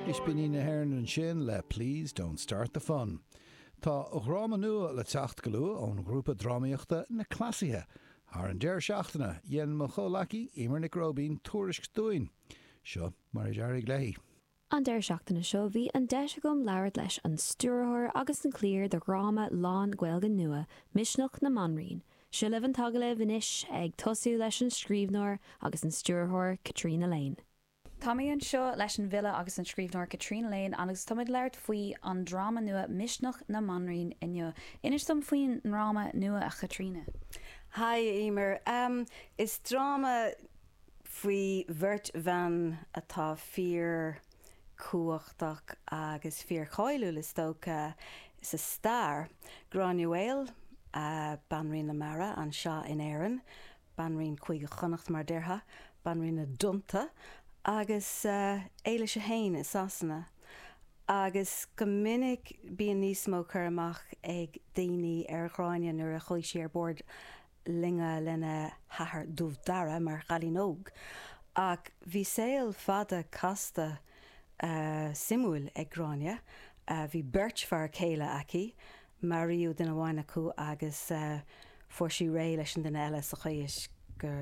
Ispíní na hÉireann ansin le Please Don't Start the Fun. Tá dráma nua le teacht go luath ón ghrúpa drámaíochta Na Cleasaithe. Thar an deireadh seachtaine, dhein mo chomhleacaí, Emer Nic Róibín, tuairisc dúinn. Seo mar a d'éirigh léi. An deireadh seachtaine seo, bhí an deis agam labhairt leis an stiúrthóir agus an cliar de dhráma lán-Ghaeilge nua, Misneach na mBanríon, Seo libh an t-agallamh anois, ag tosú leis an scríbhneoir agus an stiúrthóir Caitríona Lane. Tá mé anseo leis an bhfile agus an scríbhneoir Caitríona Lane agus táimid ag labhairt faoi an dráma nua Misneach na mBanríon inniu. Inis dom faoin ndráma nua, a Chaitríona. Haigh, a Emer. Is dráma faoi bheirt bhan atá fíor cumhachtach agus fíorcháiliúil is dócha sa stair, Gráinne Mhaol, Banríon na Mara, anseo in Éirinn, Banríon Chúige Chonnacht mar a déarfá, Banríon na dTonnta, agus Éilis a hAon i Sasana. Agus go minic bíonn níos mó cur amach ag daoine ar Ghráinne nuair a chuaigh sí ar bord loinge lena hathair Dubh Dara mar chailín óg ach bhí saol fada casta suimiúil ag Gráinne. Bhí beirt fear céile aici, maraíodh duine amháin acu agus fuair sí réidh leis an duine eile sa chaoi is go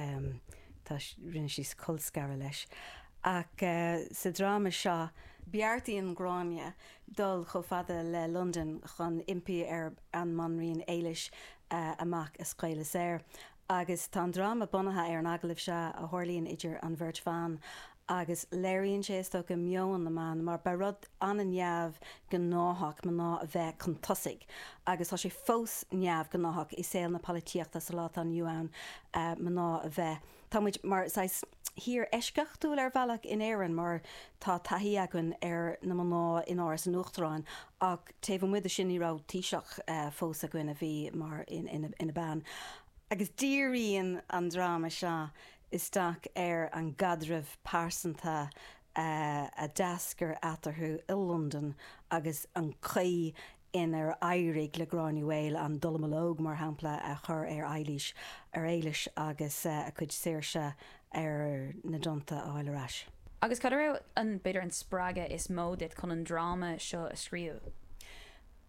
rinne sí colscaradh leis ach sa dráma seo, beartaíonn Gráinne dul chomh fada le Londain chun impí ar an mBanríon Éilis a mac a scaoileadh saor. Agus tá an dráma bunaithe ar an agallamh seo a tharlaíonn idir an bheirt bhan agus léiríonn sé, is dócha, meon na mban mar ba rud an-neamhghnáthach mná a bheith chun tosaigh agus tá sé fós neamhghnáthach i saol na polaitíochta sa lá atá inniu ann mná a bheith, tá muid mar shaghas tír eisceachtúil ar bhealach in Éirinn mar tá taithí againn ar na mná in Áras an Uachtaráin ach taobh amuigh de sin ní raibh Taoiseach fós againn a bhí mar ina bean. Agus díríonn an dráma seo isteach ar an gcaidreamh pearsanta a d'eascair eatarthu i Londain agus an chaoi inar éirigh le Gráinne Mhaol an dallamullóg, mar shampla, a chur ar Eilís, ar Éilis, agus a cuid saoirse ar na dtonnta a fháil ar ais. Agus cad é, b'fhéidir, an spreagadh is mó duit chun an dráma seo a scríobh?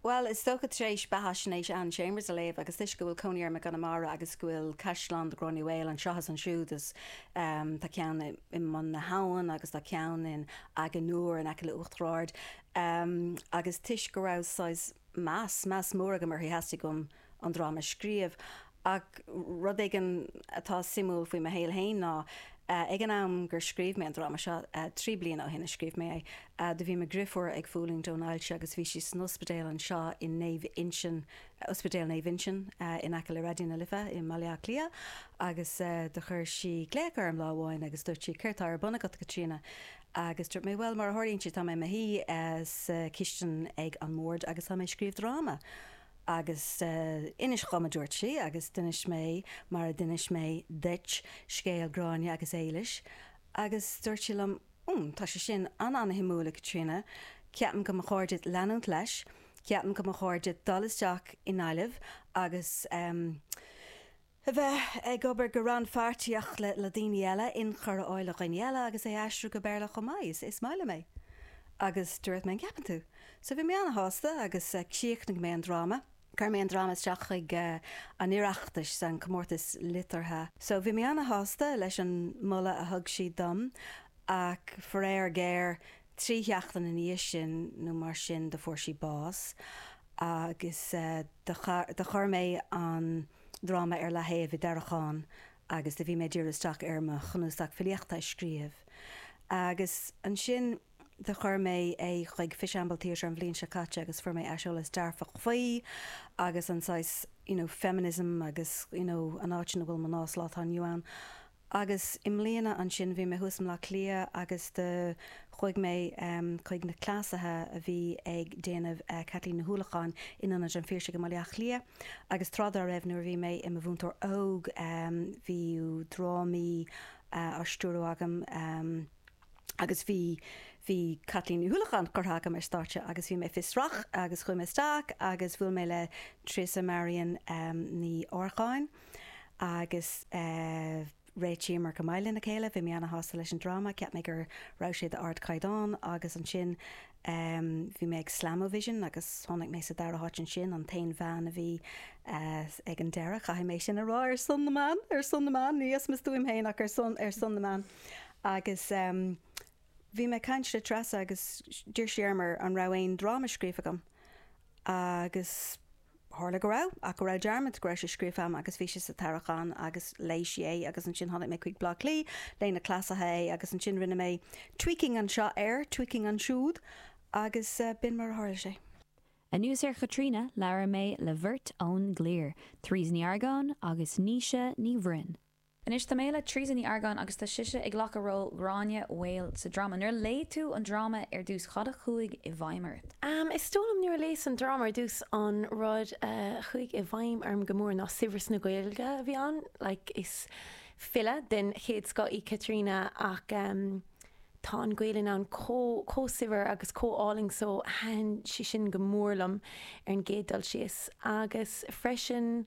Bhuel, is dócha, tar éis beathaisnéis Anne Chambers a léamh, agus toisc go bhfuil cónaí orm i gConamara agus go bhfuil caisleán Ghráinne Mhaol anseo is ansiúd, is tá ceann i mBun na hAbhann agus tá ceann in Achadh na nIúr in aice le Uachtar Ard, Ehm, agus toisc go raibh saghas meas, meas mór agam uirthi, theastaigh uaim an dráma a scríobh. Ach rud éigin atá suimiúil faoi mo shaol féin ná, ag an am gur scríobh mé an dráma seo, trí bliana ó shin a scríobh mé é, do bhí mo dheirfiúr ag fulaingt ón ailse agus bhí sí san ospidéal anseo i Naomh Uinseann, Ospidéal Naomh Uinseann in aice le Raidió na Life i mBaile Átha Cliath. Agus do chuir sí glaoch orm lá amháin agus dúirt sí, 'Céard tá ar bun agat, a Chaitríona? Agus dúirt mé, 'Bhuel, mar a tharlaíonn sé, tá mé i mo shuí sa chistin ag an mbord agus táim ag scríobh dráma. Agus inis dhom, a dúirt sí, agus d'inis mé, mar a d'inis mé duit, scéal Gráinne agus Éilis. Agus dúirt sí liom, 'Hum, tá sé sin an-an-suimiúil, a Chaitríona. Ceapaim go mba chóir duit leanúint leis. Ceapaim go mba chóir duit dul isteach i nGaillimh agus, em, a bheith ag obair go rannphairtíoch le daoine eile, inchur a fháil ó dhaoine eile agus é a aistriú go Béarla chomh maith. Is maith liom é. Agus dúirt mé, an gceapann tú? So bhí mé an-shásta agus chríochnaigh mé an dráma, chuir mé an dráma isteach chuig an Oireachtas, an comórtas liteartha. So bhí mé an-shásta leis an moladh a thug siad dom ach faraor géar trí sheachtain ina dhiaidh sin nó mar sin do fuair sí bás agus do chuir mé an dráma ar leataobh i dtarraiceán agus do bhí mé ag diriú isteach ar mo chnuasach filíochta a scríobh agus ansin do chuir mé é chuig Fishamble Theatre an bhliain seo caite agus fuair mé aiseolas dearfach faoi agus an saghas you know feminism agus you know an áit ina bhfuil mná sa lá atá inniu ann. Agus i mbliana ansin bhí mé thuas i mBleá Cliath agus do chuaigh mé chuig Na Cleasaithe a bhí ag déanamh Caitlín Ní Uallacháin in Ionad an Phiarsaigh i mBaile Átha Cliath agus tráth dá raibh nuair a bhí mé i mo mhúinteoir óg bhí drámaí á stiúradh agam agus bhí bhí Caitlín Ní Uallacháin curtha agam ar stáitse agus bhí mé fiosrach agus chuaigh mé isteach agus bhuail mé le Treasa Marian Ní Earcáin agus réitíomar go maith lena chéile. Bhí mé ana-shásta leis an dráma, cheap mé go raibh sé d'ardchaighdeán, agus ansin bhí mé ag Slam-O-Vision agus tháinig mé sa dara háit ansin, an t-aon bhean a bhí ag an deireadh, caithfidh mé sin a rá, ar son na mban, ar son na mban, ní as mo stuaim féin ach ar son, ar son na mban. Agus bhí mé ag caint le Treasa agus d'iarr sí orm an raibh aon dráma scríofa agam agus. Tharla go raibh, ach go raibh dearmad, go raibh sé scríofa agam agus bhí sé sa tarraiceán agus léigh sí é agus ansin tháinig mé chuig Bleá Cliath, léigh na Cleasaithe é agus ansin rinne mé tweaking anseo air, tweaking ansiúd agus b'in mar a tharla sé. Anuas ar Chaitríona, labhair mé le bheirt ón gcliar, Therese Ní Earcáin agus Naoise Ní Bhroin. Anois tá mé le Teresa Ní Argáin agus tá sise ag glacadh ról Ghráinne Mhaol sa dráma. Nuair a léigh tú an dráma ar dtús, cad a chuaigh i bhfeidhm ort? Is dóigh liom nuair a léas an dráma ar dtús, an rud a chuaigh i bhfeidhm orm go mór ná saibhreas na Gaeilge a bhí ann. Like, is file den chéad scoth í Caitríona ach tá an Ghaelainn ann chomh, chomh saibhir agus chomh álainn so thaitin sé sin go mór liom ar an gcéad dul síos agus freisin,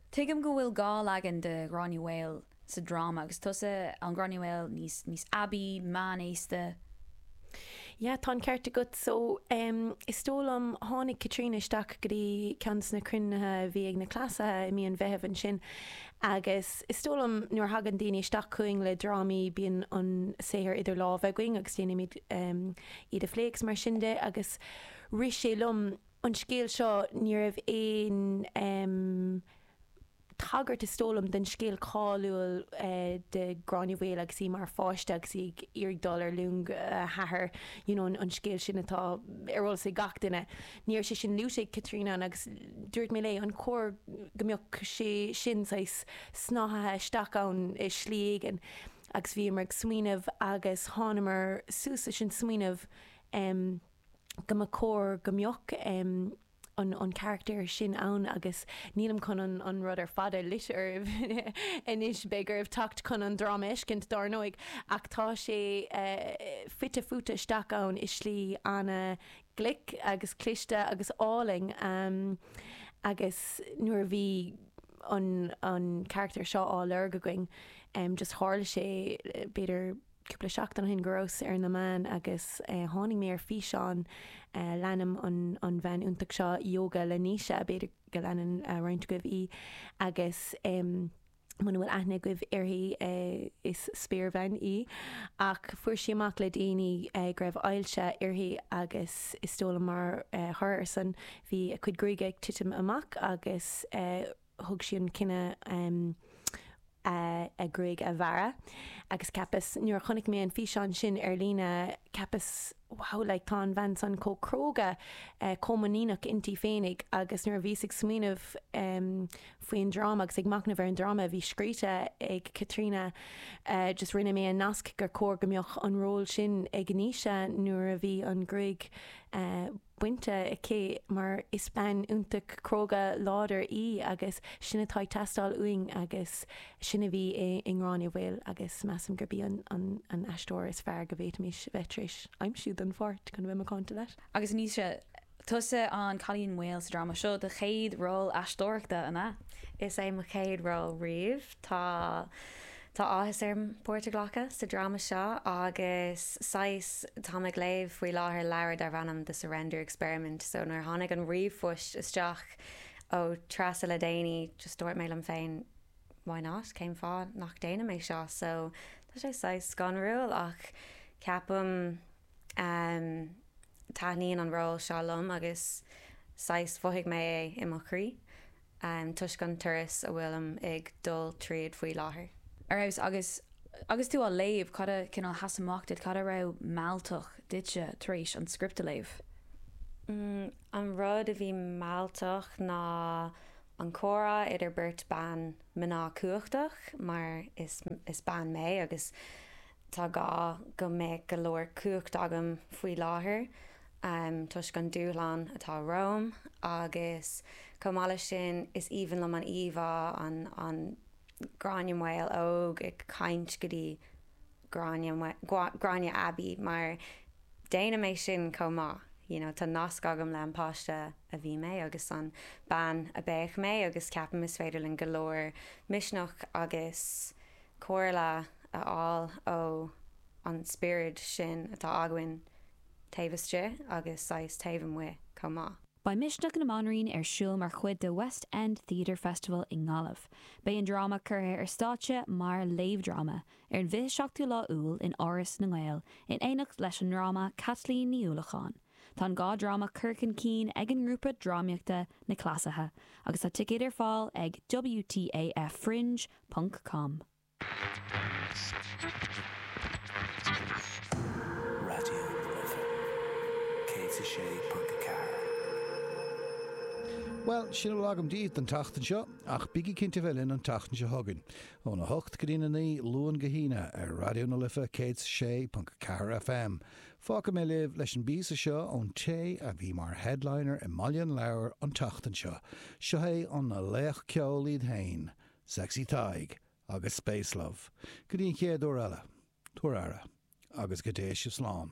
Tuigim go bhfuil dhá leagan de Ghráinne Mhaol sa dráma, agus tusa an Gráinne Mhaol níos, níos aibí, meánaosta. Yeah, tá an ceart agat. So, em, is dóigh liom, tháinig Caitríona isteach go dtí ceann de na cruinnithe a bhí ag na Cleasaithe i mí an Mheithimh ansin agus is dóigh liom nuair a thagann daoine isteach chugainn le drámaí, bíonn an saothar idir lámha againn agus déanaimid, em, iad a phlé agus mar sin de agus rith sé liom, an scéal seo, ní raibh aon tagairt, is dóigh liom, don scéal cáiliúil de Gráinne Mhaol agus í mar pháiste agus í ag iarraidh dul ar long a hathar, you know an scéal sin atá ar eolas ag gach duine. Ní raibh sé sin luaite ag Caitríona ann agus dúirt mé léi, an chóir go mbeadh sé sin saghas snáithithe isteach ann i slí éigin? Agus bhíomar ag smaoineamh agus thánamar suas leis an smaoineamh, go mba chóir go mbeadh an carachtar sin ann agus nílim chun an rud ar fad a loit oraibh anois, beidh oraibh teacht chun an dráma a fheiscint dar ndóigh, ach tá sé fite fuaite isteach ann i slí an-ghlic agus cliste agus álainn agus nuair a bhí an carachtar seo á lorg againn just tharla sé, b'fhéidir. cúpla seachtain ó shin go rabhas ar na meáin agus tháinig mé ar físeán, leanaim an bhean iontach seo, Ióga le Naoise, b'fhéidir go leanann roinnt agaibh í agus muna bhfuil aithne agaibh uirthi is spéirbhean í, ach fuair sí amach le déanaí go raibh ailse uirthi agus is dóigh liom mar thoradh ar san bhí a cuid gruaige ag titim amach agus thug sí an cinneadh a gruaig a bhearradh agus cheapas nuair a chonaic mé an físeán sin ar líne cheapas wow like tá an bhean san chomh cróga chomh muiníneach inti féinig agus nuair a bhíos ag smaoineamh faoin dráma agus ag machnamh ar an dráma a bhí scríte ag Caitríona just rinne mé an nasc gur chóir go mbeadh an ról sin ag Naoise nuair a bhí an ghruaig bainte aici mar is bean iontach cróga láidir í agus sin atá ag teastáil uainn agus sin a bhí i nGráinne Mhaol agus measaim gurb í an aisteoir is fearr go bhféadfaimis bheith tar éis aimsiú don pháirt, chun a bheith macánta leat. Agus Naoise, tusa an cailín maol sa dráma seo, do chéad ról aisteoireachta, an ea? Is é mo chéad ról riamh. Tá áthas orm páirt a ghlacadh sa dráma seo agus saghas. Táim ag léamh faoi láthair leabhar darb ainm The Surrender Experiment so nuair a tháinig an ríomhphoist isteach ó Treasa le déanaí just dúirt mé liom féin why not, cén fáth nach déanaim é seo so tá sé saghas scanrúil ach ceapaim ehm taitníonn an ról seo liom agus saghas mhothaigh mé é i mo chroí. toisc an turas a bhfuilim ag dul tríd faoi láthair. Ar fheabhas. Agus agus tú á léamh, cad a cineál sheas amach duit, cad a raibh mealltach duitse tar éis an script a léamh? An rud a bhí mealltach ná an comhrá idir beirt bhan mná cumhachtach, mar is bean mé, agus Tá gá go mbeadh go leor cumhacht agam faoi láthair toisc an dúshlán atá romham agus chomh maith leis sin is aoibhinn liom an íomhá an Gráinne Mhaol Óg ag caint go dtí Gráinne Aibí mar déanaim é sin chomh maith you know tá nasc agam le an páiste a bhí mé agus an bean a bheadh mé agus ceapaim is féidir linn go leor misneach agus comhairle a fháil ó an spiorad sin atá againn taobh istigh agus saghas taobh amuigh chomh maith. Beidh Misneach na mBanríon ar siúl mar chuid de West End Theatre Festival i nGaillimh. Beidh an dráma curtha ar stáitse mar léamhdhráma ar an bhfiche seachtú lá Iúil in Áras na nGael in éineacht leis an ndráma Caitlín Ní Uallacháin. Tá an dhá dráma curtha chun cinn ag an ngrúpa drámaíochta Na Cleasaithe agus tá ticéid ar fáil ag WTAFFringe ponc com. Raidió na Life 106.4. Bhuel, sin a bhfuil agam daoibh don tseachtain seo, ach bígí cinnte bheith linn an tseachtain seo chugainn, óna hocht go dtína naoi, Luan go hAoine, ar Raidió na Life 106.4 FM. Fágfaidh mé libh leis an bpíosa seo ón té a bhí mar headliner i mBaile an Leabhair an tseachtain seo. Seo é an laoch ceoil iad fhéin. Sexy Tadhg agus Space Love, go dtí an chéad uair eile, tabhair aire, agus go dté sibh slán.